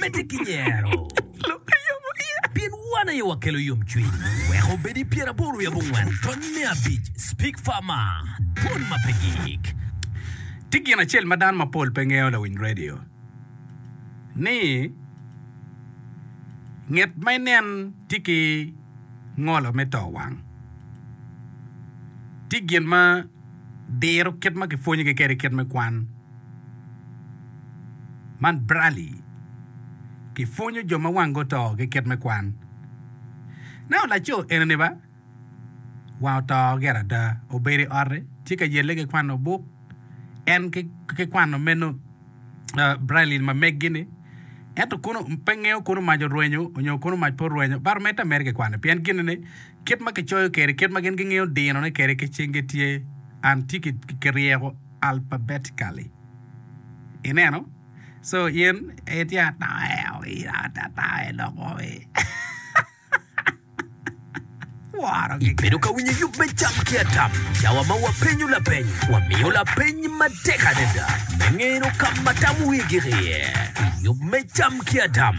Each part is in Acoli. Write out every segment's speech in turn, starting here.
Medde ki nyero, pien wan aye wakelo yomcwiny. Wek obed i pyeraboro wiye abongwen tony me abic, Speak Farmer, Dwol ma pe gik. Tye gin acel ma dano mapol pe ngeyo lawiny radio ni nget ma inen tye ki ngolo me to wang. Tye gin ma. diro kit ma kipwonyogi kwede kit me kwan. Man Braley. Kipwonyo jo ma wangi oto ki kit me kwan. Neno laco enini ba? Wange oto gire ada. Obedo i ote, tye ka yelle ki kwano buk. En ki kwano meno Braley ma meggi-ni. Ento kono pe ngeyo kono mac orwenyo nyo kono mac pe orwenyo. Baromette mere ki kwane pien gin-ni Kit ma kicoyo kede, kit ma gin gingeyo dinone kede ki cingi tye an tye ki ryeko alphabetically. Ineno? So in itye atoe owi atoe dok owi. Woro gi Ibedo ka winyo yub me cam ki atam? Cawa ma wapenyo lapeny, wamiyo lapeny matek adada me ngeno ka ma tam wigi iye i yub me cam ki atam.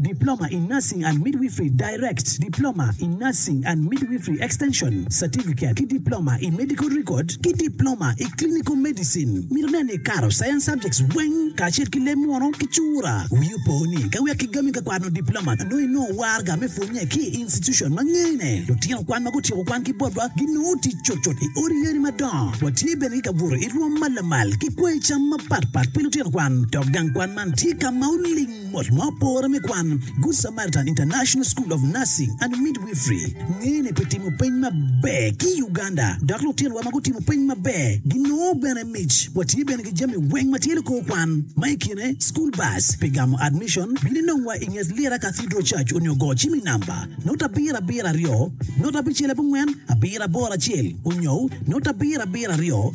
Diploma in Nursing and Midwifery, Direct, Diploma in Nursing and Midwifery Extension, Certificate, ki Diploma i Medical Record ki Diploma i Clinical Medicine. Mito nen ni ikato Science Subjects weng kacel ki leb munu ki cura. Wii opo ni ka wek kigami ka kwano Diploma nongo inongo warga me pwonye ki i institution ma ngene. Lutino kwan ma gutyeko kwan ki botwa ginongo tic cutcut i odi yeni madongo. Watye bene ki kabuto i rwom ma lamal ki kwanyi cam mapatpat pi lutino kwan dok gang kwan man tye ka ma oling. Mot ma opore me kwan, Good Samaritan International School of Nursing and Midwifery ngene pi timo peny maber ki i Uganda, dok lutinwa ma gutimo peny maber ginongo bene mic. Watye bene ki jami weng ma tye likor kwan, ma i kine school bus pi gamo admission, bino inongwa i nget Lira Cathedral Church onyo go cim i namba note abiro abiro aryo note abicel abongwen abiro aboro acel onyo note abiro abiro aryo.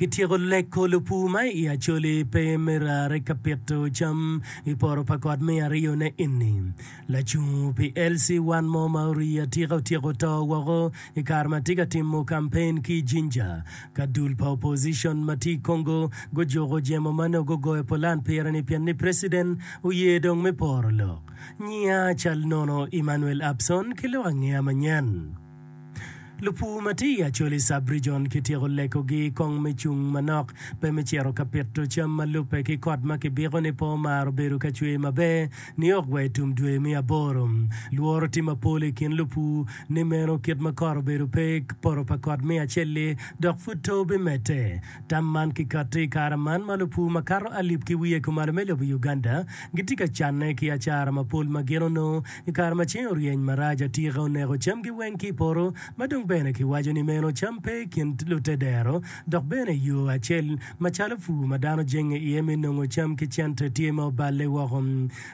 Kityeko leko lupu ma i Acholi pe me rare ka pito cam i poro pa kot me aryo ne eni. Lacung pi LC one mo ma orii atika otyeko to woko i kare ma tye ka timo kampen ki i Jinja ka dul pa opposition ma tye i Congo gujuko jemo ma nongo gugoyo pulan pire ni pien ni President oye dong me poro lok. Nyiya cal nono Emmanuel Abson ki lok angeya manyen. Lupur ma tye i Acholi Sub-Region kityeko lekogi kong me cung manok, pe me cito ka pito cam ma lubbe ki kot ma kibiko ni pe omaro bedo ka cwer maber niok wa i tum dwe me aboro. Lworo tye mapol i kin lupur ni meno kit ma kot obedo pe, poto pa kot me acel-li dok pud to bimedde. Tam man kikatti i kare man ma lupur makato alip ki wiye kumalo me lobo Uganda gitye ka canne ki acara mapol ma gin onongo I kare ma ceng oryeny marac, atika oneko camgi weng ki i poto, ma dong bene kiwaco ni meno cam pe i kin lute dero, dok bene yo acel macalo pur ma dano jenge iye me nongo cam ki cente tye ma oballe woko.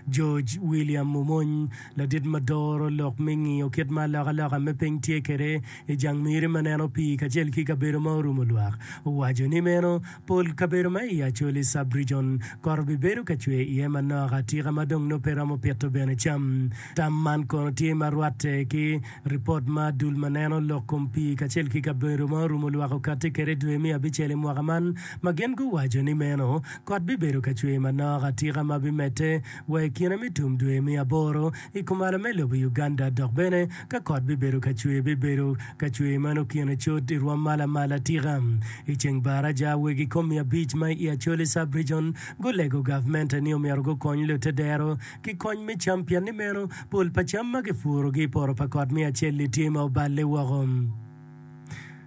George William Mumony, ladit ma doro lok me ngiyo kit ma alokaloka me piny tye kwede i jang miri ma neno pii kacel ki kabedo ma orumo lwak, owaco ni meno Pol kabedo ma i Acholi Sub-Region kot obibedo ka cwe iye manok atika ma dong nongo pe romo pito bene cam. Tam man kono tye ma rwatte ki ripot ma dul ma neno lok kom pii kacel ki kabedo ma orumo lwak okatti kwede i dwe me abicel i mwaka man ma gin guwaco ni meno kot bibedo ka cwe manok atika ma bimedde wa i kine me tum dwe me aboro I kumalo me lobo Uganda dok bene ka kot bibedo ka cwer bibedo ka cwer ma nongo kine cot i rwom mal amal atika. I ceng bar aja weg i kom miya abic ma i Acholi Sub-Region gulego gavmente ni omyero gukony lute dero ki kony me cam pienni meno pol pa cam ma gipurogi i poto pa kot miya acelli tye ma oballe woko.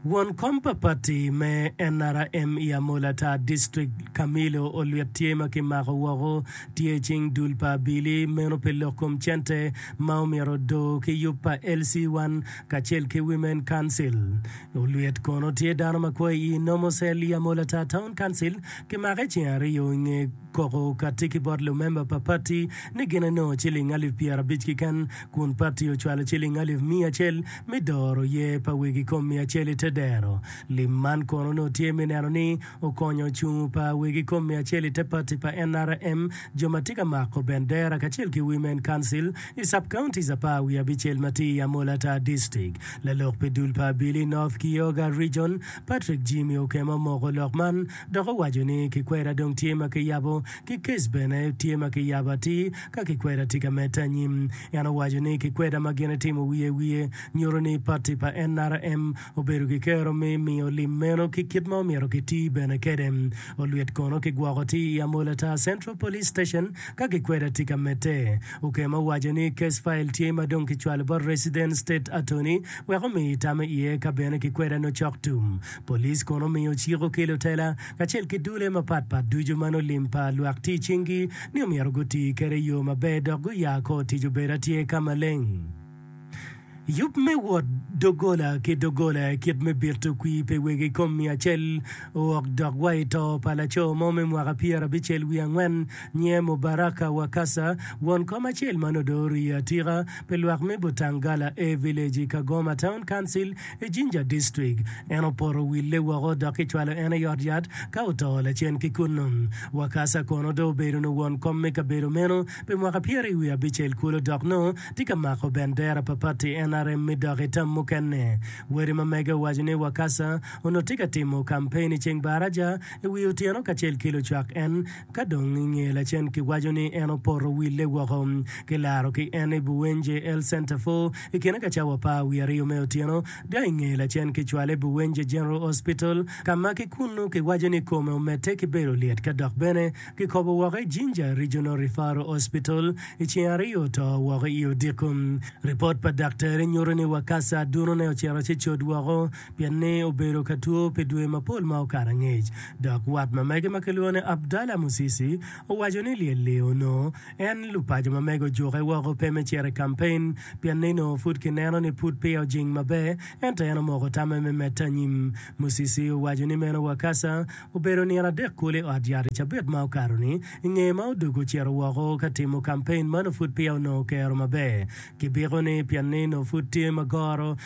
Won kom pa pati me nrm i Amola Tar District, Camillo Olwit tye ma kimako woko tye i cing dul pa Abili meno pi lok kom cente ma omyero odo ki yub pa LC1 kacel ki Women Council. Olwit kono tye dano ma kwo i Nomo Cell i Amola Tar Town Council kimake ceng aryo i nge Koko katiki bot lumemba pa pati ni gin enongo ciling alip pyerabic keken, kun pati ocwalo ciling alip miya acel me doro yer pa wegi kom miya acel i te dero. Lim man kono onongo tye me neno ni okonyo ocung pa wegi kom miya acel i te pati pa NRM, jo ma tye ka mako bendera kacel ki Women Council i Sub-counties apar wiye abicel ma tye i Amola Tar District. Lalok pi dul pa Abili North ki Yoga Region, Patrick Jimmy Okema omoko lok man, Dok owaco ni, Ki kwera dong tye ma kiyabo, ki kec bene tye ma kiyabo atir, ka ki kwera tika medde anyim? En owaco ni, Ki kweda ma gin itimo wiye wiye, nyuto ni pati pa NRM obedo ki kero me miyo lim meno ki kit ma omyero ki ti bene kede. Olwit kono ki gwoko ti i Amola Tar Central Police Station ka ki kweda tika medde. Okema owaco ni, Case file tye ma dong ki cwalo bot Resident State Attorney wek omi itame iye ka bene ki kweda nocok tum. Police kono omiyo cik oki lutela kacel ki dule mapat pat ducu ma nongo lim pa lwak tic cing gi ni omyero guti kede yoo maber dok guya kor tic obedo atyer ka maleng. Yub me wot dogola ki dogola kit me bito kwii pe wegi ikom miyo acel ook dok wa ito pa laco mo me mwaka pyera abicel wiye angwen nyier Mubaraka Wakasa won kom acel ma nongo dong oriyo atika pe lwak me Butangala A village i Kagoma town council I Jinja District, en opoto wille woko dok kicwalo en i ot yat ka oto lacen ki kunnu. Wakasa kono dong obedo nyo won kom me kabedo meno pi mwaka pyeri wiye abicel kulu dok nongo tye ka mako bendera pa pati NRM mi dok i tam mukene, wede ma mege owaco ni Wakasa onongo tye ka timo kampein i Ceng Baraja i wi otyeno kacel ki lucwak en. Ka dong i nge lacen kiwaco ni en opoto wille woko. Kilaro ki en i Buwenje El Centerfor i kine ka cawa apar wiye aryo me otyeno, dok i nge lacen kicwale i Buwenje General Hospital ka ma ki kunnu kiwaco ni kome omedde ki bedo lyet ka dok bene kikobo woko i Jinja Regional Referral Hospital i ceng aryo oto woko i odiko. Ripot pa daktari nyuto ni Wakasa adunone ocito ci cot woko pien ni obedo ka two pi dwe mapol ma okato angec, dok wat mamege ma kilwongo ni Abdallah Musisi owaco ni lyel-li onongo en lupaco mamege ojuke woko pe me cito i kampein pien ni onongo pud kineno ni pud peya ojing maber ento en omoko tamme me medde anyim. Musisi owaco ni meno Wakasa obedo nino adek kulu i ot yat i cabit ma okato-ni i ngeye ma odog ocito woko ka timo kampein ma onongo pud peya onongo kero maber ki biko-ni pien ni onongo pud tye ma goro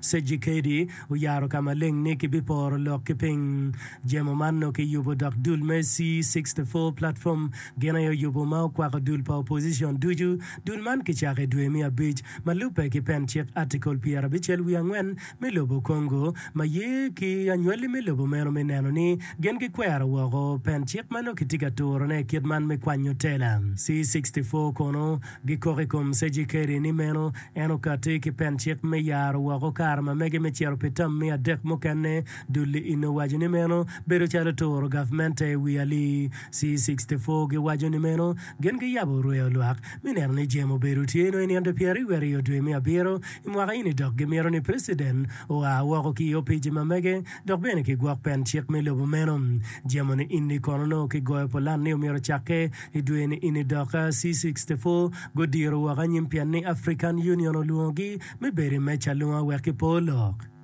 Cejikedi oyaro ka maleng ni kibiporo lok ki piny. Jemo man nongo kiyubo dok dul me C sixty four Platform gin aye oyubo ma okwako dul pa opposition ducu. Dul man kicako i dwe me abic ma lubbe ki pen cik Article pyerabicel wiye angwen me lobo Congo ma ye ki anywali me lobo meno me neno ni gin gikwero woko pen cik ma nongo kitye ka turone i kit man me kwanyo tela. C sixty four kono Gikok i kom Cejikeri ni meno en okatti ki pen cik me yaro woko kare ma mege me cito pi tam miya adek mukene. Dulli ino owaco ni meno bedo calo turo gavmente i wi ali. C64 giwaco ni meno gin giyabo rweyo lwak me neno ni jemo obedo tye nongo i nino pyeraryo aryo dwe me abiro i mwaka eni dok gimito ni preciden oa woko ki i opici ma mege dok bene ki gwok pen cik me lobo meno. Jemo ni ini kono nongo ki goyo pulan ni omyero ocakke I dwe-ni ini doka C64 gudiro woko anyim pienni African Union olwongogi me bedo i meja alunga wek gipo lok.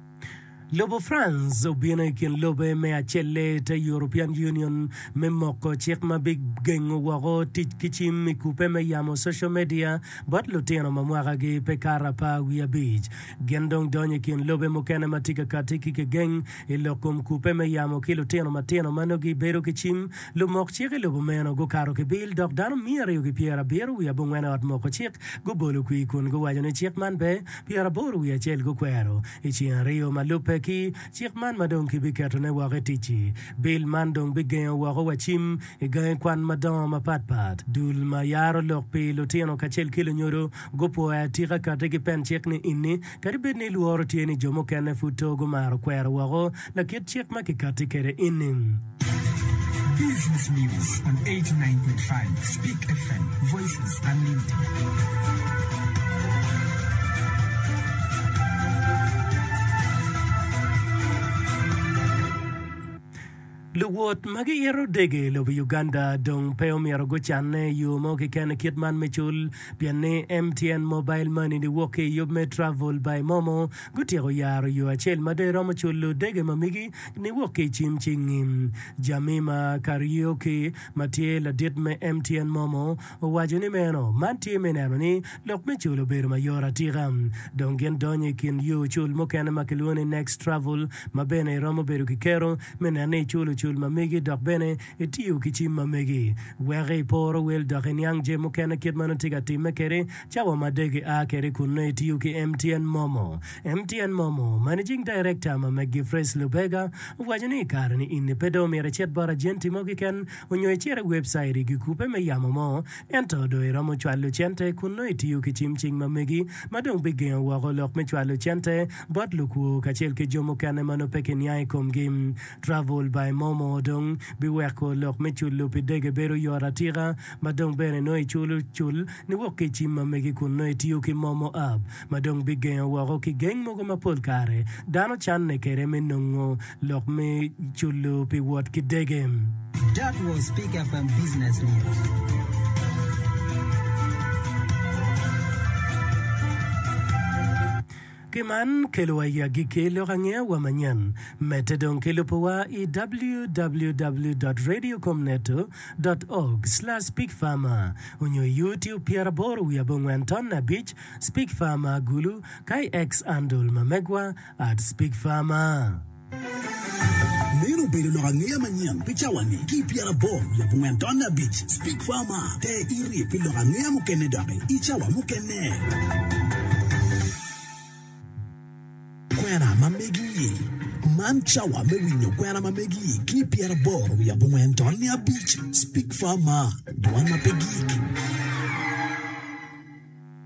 Lobo France obino i kin lobe me acelle te European Union me moko cik ma bigengo woko tic ki cim i kubbe me yamo social media bot lutino ma mwakagi pe kato apar wiye abic. Gin dong donyo i kin lobe mukene ma tye ka katti ki kegeng i lok kom kubbe me yamo ki lutino matino ma nongo gibedo ki cim Lumok cik i lobo meno gukato ki bil dok dano miya aryo ki pyer abiro wiye abongwen i ot moko cik gubolo kwir kun guwaco ni cik man pe, pyer aboro wiye acel gukwero i ceng aryo ma lubbe ki cik man ma dong kibiketo ne woko i ticci. Bil man dong bigengo woko wa cim i gangi kwan madongo mapat pat. Dul ma yaro lok pi lutino kacel ki lunyodo gupwoyo atika kati ki pen cik ni inni Kadi bed ni lworo tye ni jo mukene pud to gumaro kwero woko lakit cik ma kikatti kwede eni. Luwot ma giito dege i lobo Uganda dong pe omyero gucanne i yo mo keken i kit man me cul pien ni MTN Mobile Money ni wok ki i yub me Travel by Momo gutyeko yaro yo acel ma dong iromo culo dege ma migi ni wok ki i cim cingi. Jamima Kariuki ma tye ladit me MTN Momo Owaco ni meno man tye me neno ni lok me cul obedo mayot atika. Dong gin donyo i kin yo cul mukene ma kilwongo ni Next Travel ma bene iromo bedo ki kero me neno ni iculo cul ma megi dok bene itiyo ki cim ma megi weko iporo wel dok iniang je mukene kit ma nongo itye ka timme kede cawa ma dek ia kede kun nongo itiyo ki MTN Momo. MTN Momo, Managing Director ma McGiffrey's Lubega owaco ni i kare-ni in ni pe dong omyero icit bot ajenti mo kiken Onyo icit i webcait i gikupe me yamo mo, ento dong iromo cwalo cente kun nongo itiyo ki cim cing ma megi, ma dong bigengo woko lok me cwalo cente bot lukwo kacel ki jo mukene ma nongo pe kiniang i komgi. Travel by Momo dong biweko lok me culo pi dege bedo yot atika, ma dong bene nongo iculo cul niwok ki i cim ma megi kun nongo itiyo ki Momo app. ma dong bigengo woko ki geng mogo ma pol kare dano canne kwede me nongo lok me culo pi wot ki dege. That was Pick FM Business News. Ki man kelowa i agikki lok angeya wa manyen. Medde dong ki lubo wa i www.radiocomneto dot org slash pickfarmer onyo i YouTube pyeraboro wiye abongwen tonne abic Speak Farmer Agulu kay ex andol ma megwa at Speak Farmer. Meno obedo lok angeya manyen pi cawa-ni ki i pyera aboro leb ongwen tonne abic. Speak Farmer, ter iri pi lok angeya mukene doki i cawa mukene. Kwena ma megi-i, Man cawa me winyo kwena ma megi-i ki i pyera aboro leb ongwen tonne abic. Speak Farmer, Dwan ma pe gik.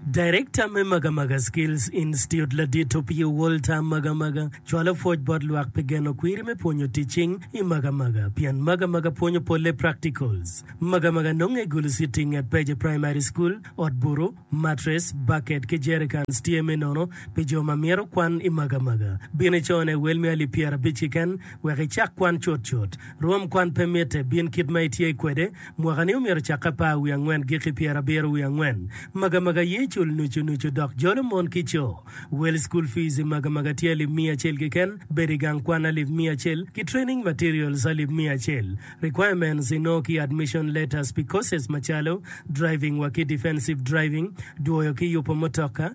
Darekta me Magamaga Skills Institute ladit Opio Walter Magamaga cwalo pwoc bot lwak pi geno kwiri me pwonyo tic cing i Magamaga pien Magamaga pwonyo polle practicals. Magamaga nonge i Gulu City nget Peje Primary School. Ot buru, mattress, bucket ki jerrycans tye me nono pi jo ma myero kwan i Magamaga. Bin icone wel me alip pyerabic kiken wek icak kwan cutcut. Rwom kwan pe mitte, bin kit ma itye kwede Mwaka-ni omyero ocak apar wiye angwen giki pyera abiro wiye angwen. Magamaga ye cul nucu nucu dok jolo mon ki co. Wel school fees i magamaga tye alip miya acel kiken, bedo i gang kwan alip miya acel, ki training materials alip miya acel. Requirements inongo ki admission letters pi courses macalo, driving wa ki defensive driving, dwoyo ki yupo mutoka,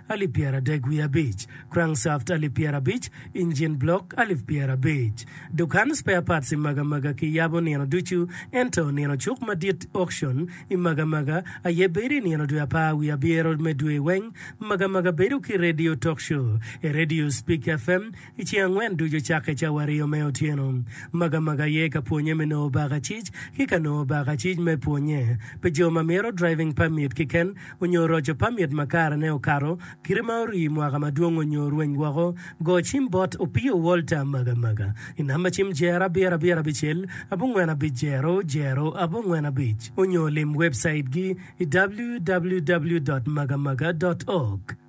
alip pyeradek wiye abic, crankshaft alip pyerabic, engine block alip pyerabic. Dukan spare parts i Magamaga kiyabo nino ducu, ento nino cuk madit, auction, i Magamaga aye bedo i nino dwe apar wiye abyero me dwe weng. Magamaga bedo ki radio talk show, e radio Speak FM, I ceng angwen ducu cakke cawario me otyeno, Magamaga aye ka pwonye me nongo bakacic ki ka nongo bakacic me pwonye pi jo ma myero driving permit kiken onyo roco permit ma kare ne okato kite ma orii mwaka madwong onyo rweny woko Go cim bot Opio Walter Magamaga I namba cim Jer abiro abiro abicel abongwen abic jero jero abongwen abic onyo lim website gi I www.magamaga.org.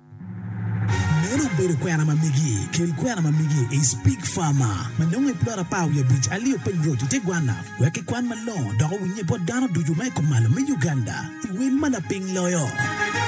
Meno obedo kwena ma migi. Kel kwena ma migi i Spig Farma ma nongo i plot apar wiye abic alio Peng Road i te gwanna wek kikwan malongo dok owinye bot dano ducu ma i kom malo me Uganda i wel ma lapiny loyo.